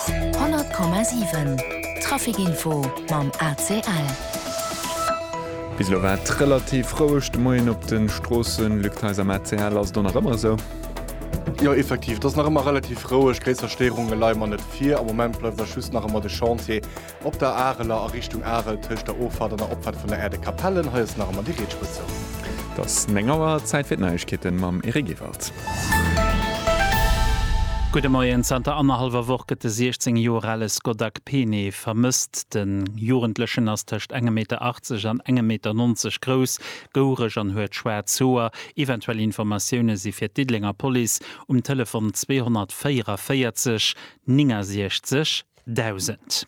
100,7 Trafic-Info mam ACL. Bis elo war et relativ roueg de Moien op de Stroossen. Luc Theis, Am ACL ass et och nach ëmmer esou? Jo, effektiv, et ass nach ëmmer relativ roueg. Gréisser Stéierunge leie mer net vir. Am Moment bleift eis just nach ëmmer de Chantier. Op der Areler a Richtung Arel tëscht der Offahrt an der Opfahrt vun der Aire de Capellen. Hei ass nach emmer déi Rietspëtz zou. Et ass 9 Auer, Zäit fir d'Neiegkeeten mam Eric Ewald. Gudde Moien, Zanter annerhallwer Woch gëtt de 16 Joer ale Skoda Kpene vermësst. De Jugendlechen ass tëscht engem Meter 80 an engem Meter 90 grouss, goureg an huet schwaarz Hoer. Eventuell Informatioune si fir d'Diddelenger Police um Telefon 244 69 Dausend.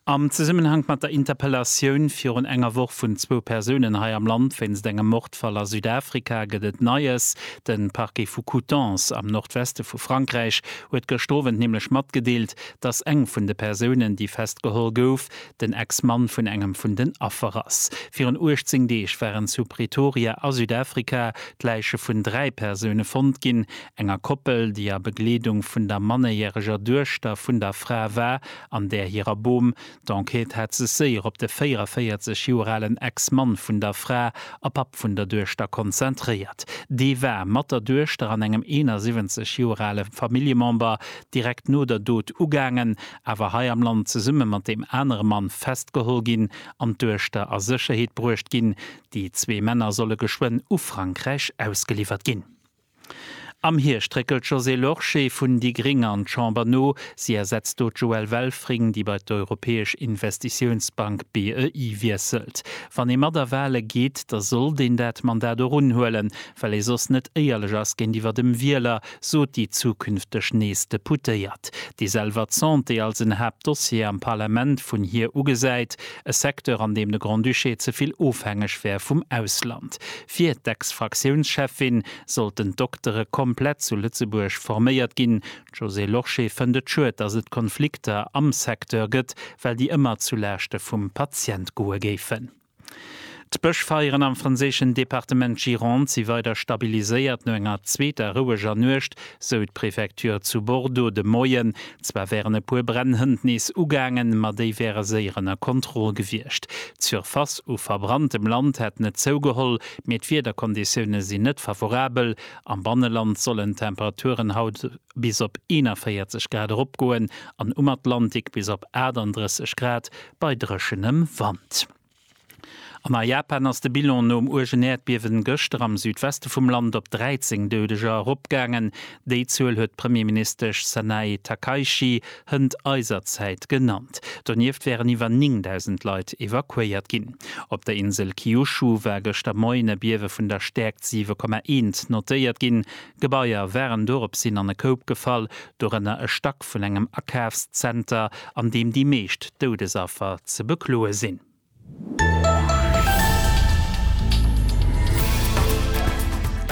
Am Zesummenhank mat der Interpellatioun virun enger Woch vun zwou Persounen hei am Land wéinst engem Mordfall a Südafrika gëtt et Neies. De Parquet vu Coutances am Nordweste vu Frankräich huet gëschter Owend nämlech matgedeelt, datt eng vun de Persounen, déi festgeholl gouf, den Ex-Mann vun engem vun den Affer ass. Virun 18 Deeg waren zu Pretoria a Südafrika d'Läiche vun dräi Persoune fonnt ginn. enger Koppel, déi a Begleedung vun der mannerjäreger Duechter vun der Fra war, an där hirer Bom. D'Enquête hat sech séier op de 44 Joer alen Ex-Mann vun der Fra a Papp vun der Duechter konzentréiert. Dee war mat der Duechter an engem 71 Joer ale Familljemember direkt no der Dot ugaangen, awer hei am Land zesumme mat deem anere Mann festgeholl ginn an d'Duechter a Sécherheet bruecht ginn. Déi zwee Männer solle geschwënn u Frankräich ausgeliwwert ginn. Am Hierscht réckelt d'Josée Lorsché vun déi gréng an d'Chamber no. Si ersetzt do d'Joëlle Welfring, déi bei d'Europäesch Investitiounsbank, BEI, wiesselt. Wann ee mat a Wale geet, da sollt een dat Mandat och unhuelen, well ee soss net éierlech ass géintiwwer dem Wieler, sot déi zukünfteg nees Deputéiert, déi selwer d'Santé als en Haaptdossier am Parlament vun hir ugesäit. e Secteur an deem de Grand-Duché ze vill ofhängeg wär vum Ausland. Fir d'Ex-Fraktiounscheffin sollten d'Doktere komplett zu Lëtzebuerg forméiert ginn. D'Josée Lorsché fënnt et schued, datt et Konflikter am Secteur gëtt, well déi ëmmer zu Laaschte vum Patient goe géifen. D'Bëschfeieren am franséischen Departement Gironde si weider stabiliséiert no enger zweeter roueger Nuecht, sou d'Prefecture zu Bordeaux de Moien. Zwar wären e puer Bränn hënt nees ugaangen, ma déi wäre séier ënner Kontroll gewiescht. D'Surface u verbranntem Land hätt net zougeholl, mee d'Wiederkonditioune sinn net favorabel. Am Banneland sollen d'Temperaturen haut bis op 41 Grad eropgoen an um Atlantik bis op 38 Grad bei dréchenem Wand. An a Japan ass de Bilan nom uergen Äerdbiewen gëschter am Südweste vum Land op 13 Doudeger eropgaangen. Déi Zuel huet d'Premierministesch Sanae Takaichi hënt eiser Zäit genannt. Donieft wären iwwer 9.000 Leit evakuéiert ginn. Op der Insel Kyushu war gëschter Moien e Biewe vun der Stäerkt 7,1 notéiert ginn. Gebaier waren doropshin an e Koup gefall, dorënner e Stack vun engem Akafszenter, an deem déi meescht Doudesaffer ze bekloe sinn.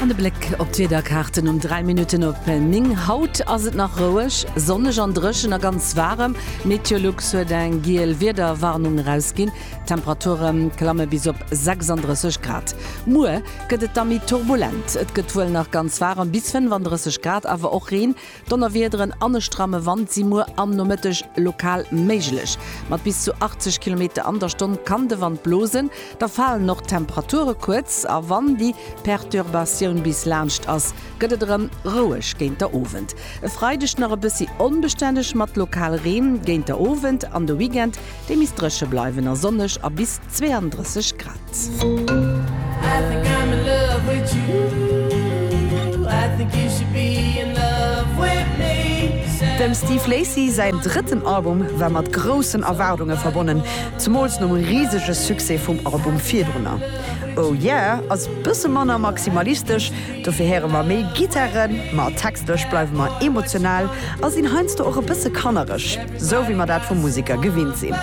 An e Bléck op d'Wiederkaarten um 3 Minutten op 9. Haut ass et nach roueg, sonneg an dréchen a ganz waarem. Meteolux huet eng giel Wiederwarnung erausginn. D'Temperature klamme bis op 36 Grad. Muer gëtt et da méi turbulent. Et gëtt wuel nach ganz waarem, bis 35 Grad, awer och Reen, Donnerwiederen an e stramme Wand si muer am Nomëtteg lokal méiglech. Mat bis zu 80 Kilometer an der Stonn kann de Wand blosen. Da falen och d'Temperature kuerz a wann déi Perturbatioun bis laanscht ass, gëtt et erëm roueg géint der Owend. E Freideg nach e bëssi onbestänneg mat lokal Reen géint der Owend an de Weekend Déi misst dréche bleiwen a sonneg a bis 32 Grad. Dem Steve Lacy säin drëtten Album war mat groussen Erwaardunge verbonnen, zemools nom risege Succès vum Album virdrunner. Oh Yeah ass bësse manner maximalistesch, dofir héiere mer méi Gittaren, ma textlech bleiwe mer emotional a sinn heiansdo och e bësse kannereg. Sou wéi mer dat vu Museker gewinnt sinn.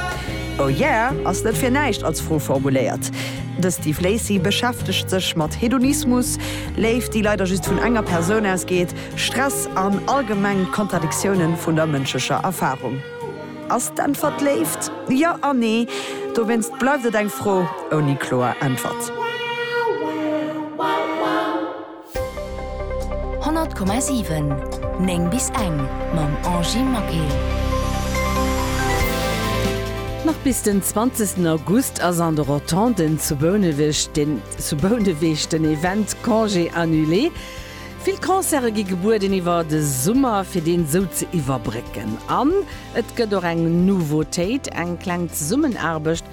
Oh yeah ass net fir näischt als Fro formuléiert. De Steve Lacy beschäftegt sech mat Hedonismus, Léift déi leider just vun enger Persoun ausgeet, Stress an allgemeng Kontradiktiounen vun der mënschlecher Erfarung. Ass d'Äntwert Léift? Jo an Nee. Dowéinst bleift et eng Fro ouni kloer Äntwert. 100,7 9 bis eng mam Angie Maquet. Nach bis den 20 August ass an de Rotonden zu Bouneweg den zu Bouneweg den Event Congé annulé. Vill Concerte gi gebueden iwwer de Summer fir deen esou ze iwwerbrécken. An et gëtt och eng Nouveautéit, eng kleng Zesummenaarbecht